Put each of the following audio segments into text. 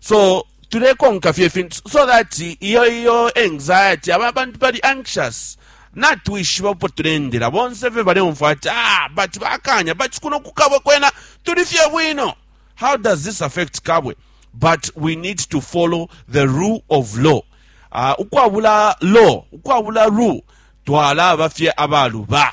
so tulekonka fye ifintu so that iyo iyo anxiety aba bantu bali anxious natwishiba upo tulendela bonse fye baleumva ati ah but bakanya but kuno kukabwe kwena tuli fye bwino how does this affect kabwe but we need to follow the rule of law uh, ukwabula law ukwabula rule twalaba fye abaluba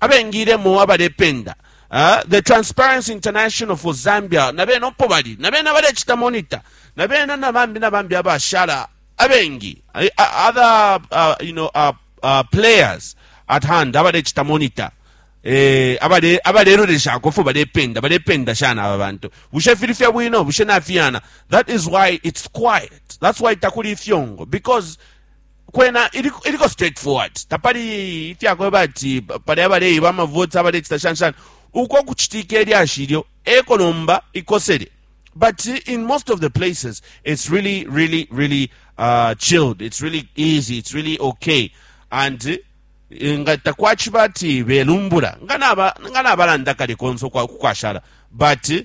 abengiilemo abalependa uh, the Transparency International for Zambia na bena opo bali na bena balecita monitor na bena na bambi na bambi abashala abengi eh, other uh, you know, uh, uh, players at hand abalecita monitor eh abale abalelolesha kofu balependa balependa shana aba bantu bushe fili fya bwino bushe nafiyana that is why it's quiet that's why takuli ifyongo because kwena iliko iliko straightforward tapali ifya kweba ati pali abaleiba amavoti abalecita shani shani uko kucitika ilyashi ilyo eko nomba ikosele but in most of the places it's really really really uh, chilled it's really easy it's really okay and eh, nga takwaciba ati belumbula nga naba- nga nabalanda kale konse ukwa- kukwashala but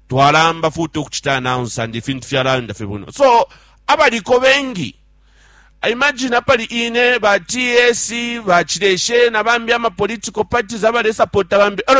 twalamba futi ukuchita announce and ifintu fyalayenda fye bwino so abaliko bengi imagine apali ine ba ts bachileshe na bambi ama political parties abalesapota bambi elo